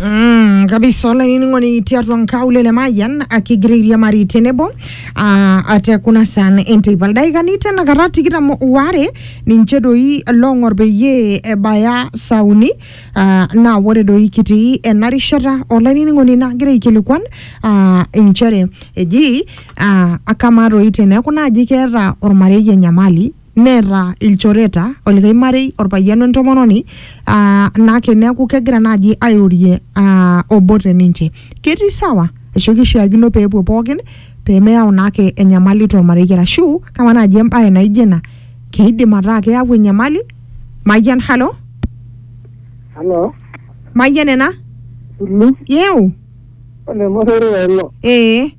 Mm, kabisa olainining'oni tiatua nkaulele le mayian akigira airiamari tenebo ah, ate kuna saan enteipa ildaikani tenakata tikitam waare ninche doi loong'or peyie ebaya saa uni ah, naa ore doi kitii ena rishata olainining'oni nagira aikilikuan ah, inchere eji ah, akamaa doi teneeku naaji keeta ormarei enyamali neeta ilchoreta olikai marei orpayian wentomononi aa nake neeku kegira naaji airorie aa obo te ninche ketii sawa ashu kishiakino peepuo pookin pemeyau naake enyamali tormarei arashu kamaa naaji embaye naijo ina keidim ataa keyau enyamali mayian halo Halo, mayian ena Sulu, yeu ole Mosori ilo. ee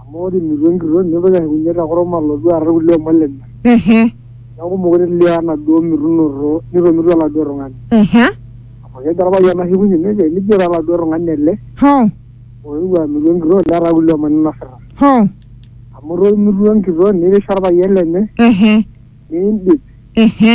amu ore imitua enkitok nitoki ashukunye te kurum alotu aar irkulie omon lenye ehe neeku mokure elio enaduo mitunoto nitomitua oladuo tung'ani ehe amu kejo orpayian ashukunye nejo enijo taa oladuo tung'ani ele hoo oewuo amitu enkitok netaa kulie omon inosita hoo amu itomitua enkitok nirish orpayian lenye ehe niindip ehe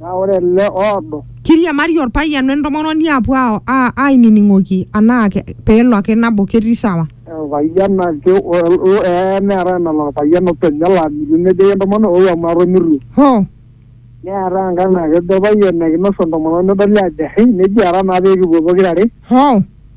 Naa ore ele oodo. Keiriamari olpayian we ntomononi aapuo aainining'oki anaa peelo ake nabo ketii sawa. Olpayian ake ee neetae enalo olpayian openy nelo amitu nejoki entomononi ou amu atomiruo. Hoo! Neetae enkae naa kejo olpayian ekinos entomononi nedoli aajo ehe neji ara naa pee kipuo pokira are. Hoo!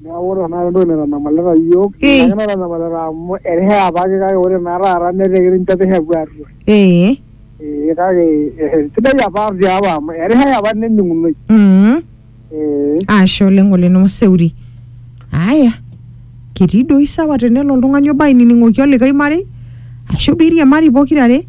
Neeku ore tanakata entoki naitanyamalita iyiook Ee. ina ake naitanyamalita amu erishata apake kake ore naa taata netaa ekinchopita epuo aatua. Ee. Ee kake eh, sidai apa tiapa amu erishata apa nening'unoi. Mm. Ee. Ashe oleng Ole Nomaseuri. Aya, ketii doi sawa tenelo oltung'ani obo ainining'oki olikae marei ashu piiriamari pokirare.